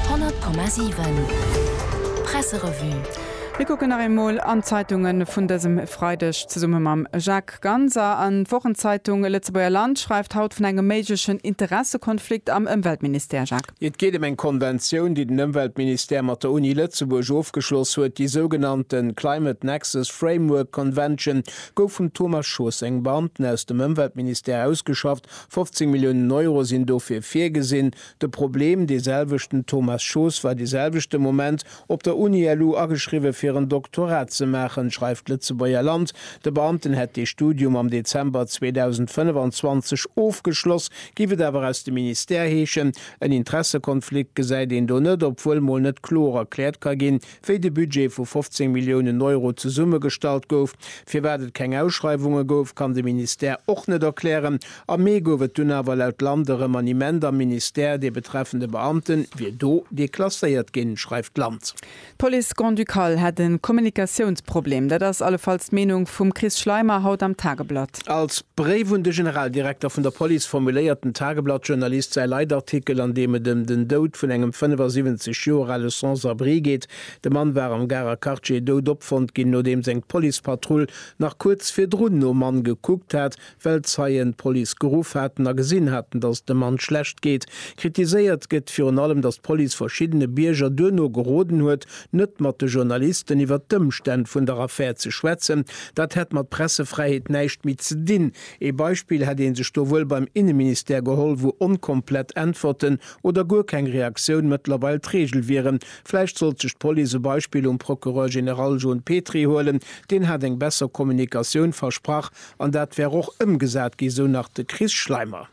100,7 Presserevue Mir kucken nach eemol an d'Zeitunge vun dësem Freideg zesumme mam Jacques Ganser. An d'Wochenzeitung Lëtzebuerger Land schreift haut vun engem méiglechen Interessekonflikt am Ëmweltministère, Jacques. Et geet ëm eng Konventioun, déi den Ëmweltministère mat der Uni Lëtzebuerg ofgeschloss huet. Déi sougenannte Climate Nexus Framework Convention gouf vum Thomas Schoos sengem Beamten aus dem Ëmweltministère ausgeschafft 15 Milliounen Euro sinn dofir virgesinn. De Problem, dee selwechten, Thomas Schoos war dee selwechte Moment op der Uni-LU ageschriwwe fir en Doktorat ze maachen, schreift d'Lëtzebuerger Land. De Beamten hätt dee Studium am Dezember 2025 ofgeschloss, géif et awer aus dem Ministère heeschen. En Interessekonflikt gesäit een do net, obwuel mol net kloer erkläert ka ginn, wéi de Budget vu 15 Milliounen Euro zesummegestallt gouf. Firwat et keng Ausschreiwunge gouf, kann de Ministère och net erklären. Am Mee gouf et dunn awer laut Land e Remaniement am Ministère, dee betreffende Beamte wier do deklasséiert ginn, schreift Land. D'Police grand-ducale hätt e Kommunikatiounsproblem. Dat ass allefalls d'Meenung vum Chris Schleimer haut am Tageblatt. Als Bréif un de Generaldirekter vun der Police formuléiert den Tageblatt-Journalist säi Leitartikel, an deem et ëm den Doud vun engem 75 Joer ale Sans-abri geet. De Mann war am Garer Quartier dout opfonnt ginn, nodeems eng Policepatrull nach kuerz virdrun nom Mann gekuckt hat, well Zeien d'Police geruff haten a gesinn haten, dass et dem Mann schlecht geet. Kritiséiert gëtt virun allem, dass d'Police verschiddene Bierger duerno geroden huet, net mat de Journalisten iwwert d'Ëmstänn vun der Affär ze schwätzen, dat hätt mat Pressefräiheet näischt méi ze dinn. Ee Beispill hätt ee sech do wuel beim Inneministère geholl, wou onkomplett Äntwerten oder guer keng Reaktioun mëttlerweil d'Regel wieren. Vläicht sollt sech d'Police e Beispill um Procureur général John Petry huelen, deen hat eng besser Kommunikatioun versprach an dat wär och ëmgesat ginn, sou nach de Chris Schleimer.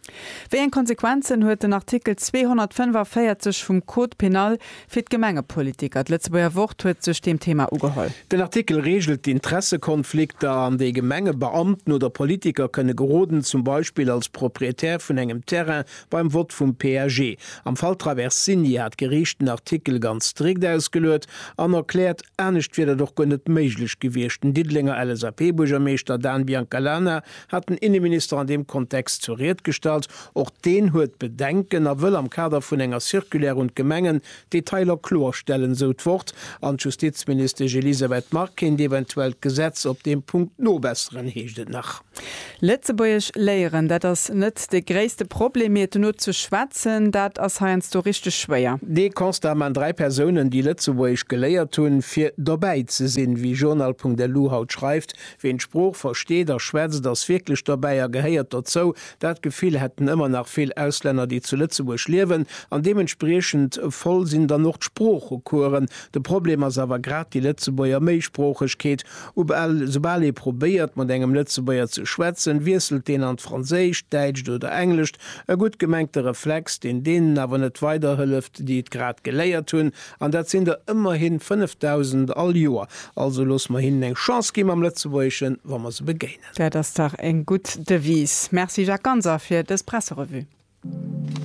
Wéi eng Konsequenzen huet den Artikel 245 vum Code pénal Fir d'Gemengepolitiker, D'Lëtzebuerger Wort huet sech deem Thema ugeholl. Den Artikel reegelt d'Interessekonflikter, an déi Gemengebeamten oder Politiker kënne geroden, zum Beispill als Proprietär vun engem Terrain beim Vott vum PAG. Am Fall Traversini hat d'Geriicht den Artikel ganz strikt ausgeluet an erkläert, anescht wier dat och guer net méiglech gewiescht. Den Diddelenger LSAP-Buergermeeschter Dan Biancalana hat den Inneminister an deem Kontext zur Ried gestallt. Och deen huet Bedenken a wëll am Kader vun enger Circulaire un d'Gemengen d'Detailer kloerstellen, esou d'Wort an d'Justizministesch Elisabeth Margue-Kind. Eventuell d'Gesetz op deem Punkt nobesseren, heescht et nach. Lëtzebuergesch léieren, dat ass net dee gréisste Problem, mee et dono ze schwätzen, dat ass heiansdo richteg schwéier. Dee Constat man dräi Persounen, déi Lëtzebuergesch geléiert hunn, fir dobäi ze sinn. Wéi Journal.lu haut schreift, Ween d'Sprooch versteet a schwätzt, ass wierklech dobäi a gehéiert dozou. Dat Gefill hätten ëmmer nach vill Auslänner, déi zu Lëtzebuerg liewen, an deementspriechend voll sinn dann och d'Sproochecoursen. De Problem ass awer grad déi Lëtzebuerger Méisproochegkeet. Ubal, soubal ee probéiert, mat engem Lëtzebuerger ze schwätzen, wiesselt deen an d'Franséischt, d'Däitscht oder Englescht. E gutt gemengte Reflex, deen deenen awer net weiderhëlleft, déi et grad geléiert hunn, an dat sinn der ëmmerhi 5.000 all Joer. Also loosse mer hinnen eng Chance gi mam Lëtzebuergeschen, wa mer se begéinen. Dat ass dach eng gutt Devise. Merci Jacques Ganser fir dës Presserevue.